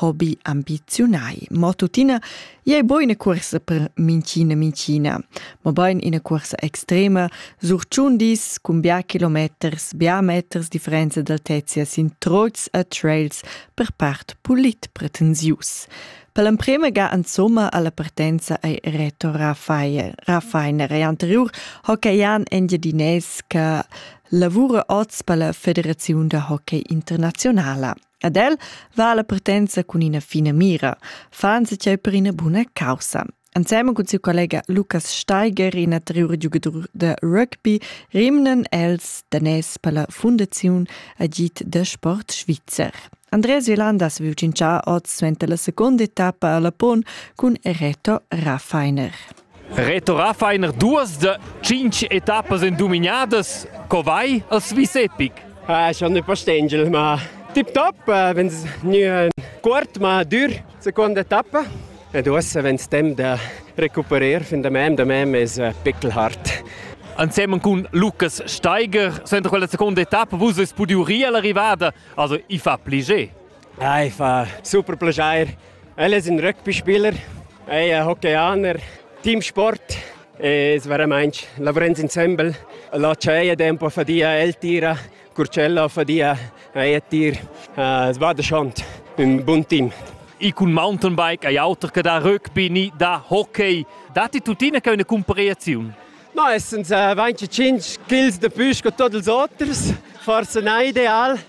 hobby ambiziunai. Mo tuttina, ei bo ina cuorsa per mincina mincina, mobein ina cuorsa extrema, sur tschun dis cun bia kilometers, bia meters differenza d'altezia sin troits e trails per part pulit pretensius. Per l'emprema ga insomma alla partenza ei Reto Rafael. Rafainer ei anterior hockeyan engiadinès che lavura oz per la Federaziun da hockey internazionala. Ad el va la partenza cun ina fina mira, fan se tgei per ina buna caussa. Ensemen cun siu collega Lukas Steiger, in anterior giugadur da rugby, rimnan els danès per la fundaziun agit de sport svizzer. Andreas Violanda se viu cinchà oz suenter la seconda etappa alla Pon cun Reto Raffeiner. Retorà fain er duas da tschintg etappas en duminadas. Co vai al Swiss Epic? Ah, schon nicht verstehen, ma tip top, wenn es nie kort, ma dur, seconda etappa. Ed uossa wenn es temp da recuperar fin da mem, da mem es pickelhart. Insieme con Lucas Steiger, sempre quella seconda etappa, vus avete podido rier l'arrivada, also i fa pliger. Ei fa super plascher. El es ün rugby-spieler, ei è hockey-aner, team sport e es veramainch lavrens insembel. La tscheia tempo fadia, el tira, Curcella fadia, ei è tir. Uh, es vada schont, ün bun team. Ich kun Mountainbike, ein Auto che da Rugby, nie da Hockey. Das ist tuttina eine Kompariation. No, es sind äh, 25 Kills de Püsch con tots els oters. Forse nicht ideal,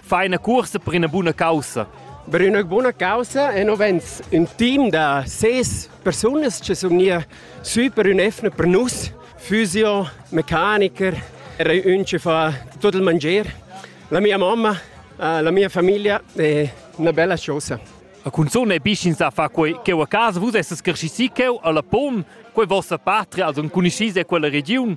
Fai ina cursa per ina buna caussa. Per una buna causa e non vens un team da ses personas che sono hier sui per un effne per nus, physio, mechaniker, era un che fa tutto il mangiare. La mia mamma, eh, la mia famiglia è una bella cosa. A cunzun è bicin sa fa quei cheu a casa, vus essas cresciuti cheu alla Pon, quei vostra patria, also cunischis è quella region.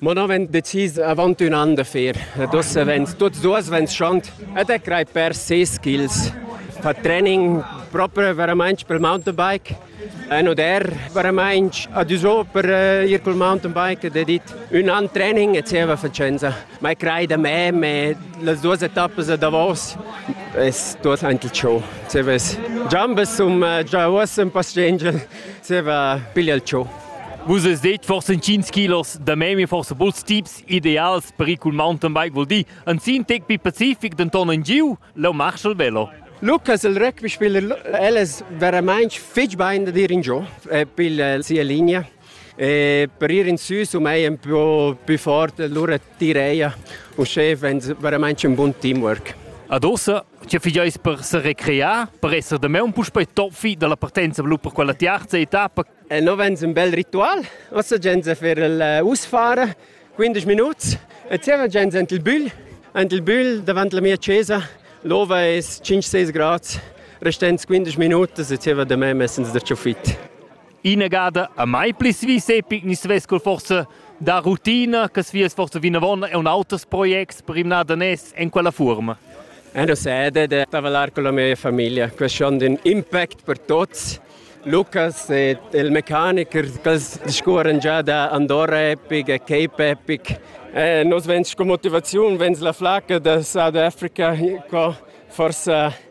Mo no vegn decis avant ün an da fer. Ed ussa vegns tuts duos vegns schont ed e crei per ses skills. Fa training proprio veramente per il mountainbike. E no der veramente adüso per eh, ir col mountainbike ed dit ün an training e zieva facenza. Ma crei da me, me las duas etappas a davos es tuos aint il show. Zieva es jambas um eh, già uossa un po' stringel. Seva piglia il ciò. Vus es det forsa 5 kilos da memi, forsa buls tips ideals per ir cul mountainbike vuol dir. Ansin tec pi pacific denton in giu, leu marschel velo. Lucas il rugby spiller, el es verament fitg bain da dir in giu per sia linea. E per ir in süs um è un po più forte, allora Direia, uschè vegn veramaintg un bun teamwork. Ad ossa, tge figeis per se recrear, per esser da me un puspei toffi dalla partenza blu per quella tiarza etappa? E no vegn un bel ritual, ossa gens a fer il usfare, 15 minuts, e zieva gens ant il bügl, ant il bügl davant la mia chesa, l'ova è 5-6 grads, restends 15 minutas e zieva da me messens da ciofit. Inagada a mai pli svis epic ni svess col forsa da rutina che svias forsa vinavon e un auters projects per rimnar da nes en quella forma. Ero sede de tavalar con la mia famiglia, questo è un impact per tutti. Lucas e il meccaniker che discorrono già da Andorra Epic e Cape Epic. E nos venci con motivazione, venci la flacca da South Africa, forse